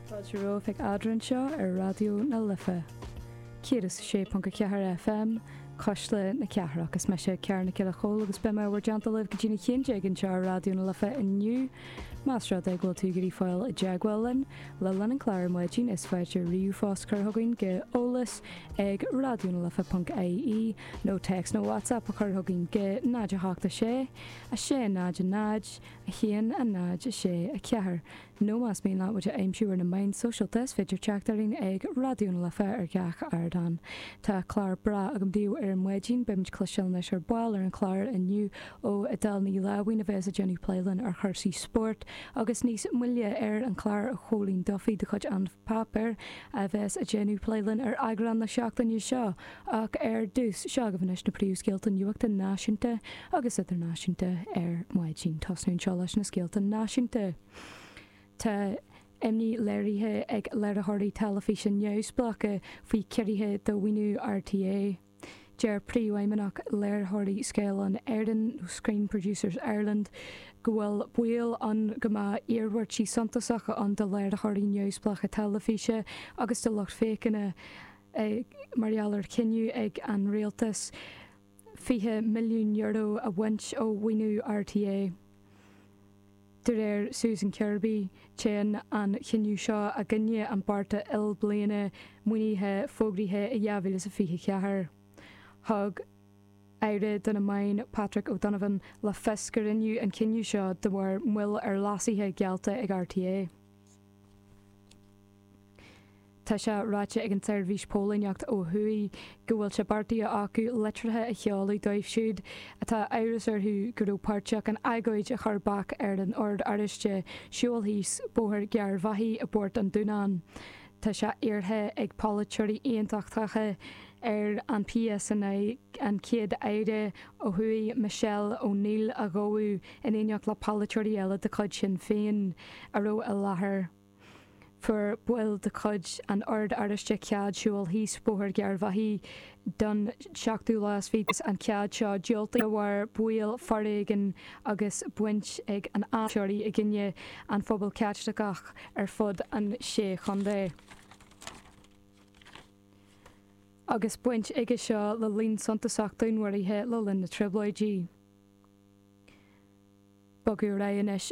Fáilte romhaibh ag Eadrainn anseo ar Raidió na Life, 106.4 FM, Cuisle na Cathrach. Is mise Cearn Nic Giolla Chóill agus beidh mé i bhur dteannta libh go dtí a haon déag anseo ar Raidió na Life inniu. Más rud é go bhfuil tú ag iarraidh fáil i dteagmháil linn, le linn an chláir ar maidin, is féidir ríomhphost a chur chugainn go eolas ag raidionalife.ie nó téacs nó whatsapp a chur chugainn go 086 600 1, 0, 6, 4, nó más mian leat muid a aimsiú ar na meáin sóisialta is féidir teacht orainn ag Raidió na Life ar gach ardán. Tá clár breá agam daoibh ar maidin, beimid ag cloisteáil anois ar ball ar an chlár inniu ó Edel Ní Láimhín a bheas ag déanamh plé linn ar chúrsaí spóirt agus níos moille ar an chlár ó Chóilín Duffy de chuid An Páipéar a bheas ag déanamh plé linn ar eagrán na seachtaine seo Ach ar dtús, seo agaibh anois na príomhscéalta nuachta náisiúnta agus idirnáisiúnta ar maidin. Tosnú anseo leis na scéalta náisiúnta. Tá imní léirithe ag léiritheoirí teilifíse neamhspleácha faoi chiorruithe do mhaoiniú RTÉ. Deir príomhfheidhmeannach Léiritheoirí Scáileáin Éireann, nó Screen Producers Ireland, go bhfuil baol ann go mbeadh iarmhairtí suntasacha ann do léiritheoirí neamhspleácha teilifíse agus do lucht féachana. mar gheall ar chinneadh ag an rialtas €20 milliún a bhaint ó mhaoiniú RTÉ. De réir Susan Kirby, téann an cinneadh seo i gcoinne an bheart ilbhliana maoinithe fógraithe i 2024. Thug aire do na meáin, Patrick O'Donovan, le fios go rinneadh an cinneadh seo de bharr moill ar leasuithe geallta ag RTÉ. Tá sé ráite ag an tseirbhís póilíneachta ó thuaidh go bhfuil sé beartaithe acu litreacha a sheoladh dóibh siúd atá amhras orthu go raibh páirteach in agóid a chuir bac ar an Ord Oráiste siúl síos Bóthar Gharbhachaidh i bPort an Dúnáin. Tá sé iarrtha ag polaiteoirí aontachtacha ar an PSNI an Chéad-Aire ó thuaidh Michelle O'Neill a ghabhadh in éineacht le polaiteoirí eile de chuid Shinn Féin a raibh i láthair. fuair baill de chuid an Oird Oráistigh cead siúl síos Bóthar Gharbhachaidh don seachtú lá is fiche. An cead seo diúltaithe de bharr baol foréigin agus baint ag an aiséirí i gcoinne an phobail Chaitliceach ar fud an Sé Chontae, agus baint aige seo le líon suntasach dúnmharuithe le linn na Trioblóidí. Bogadh ar aghaidh anois.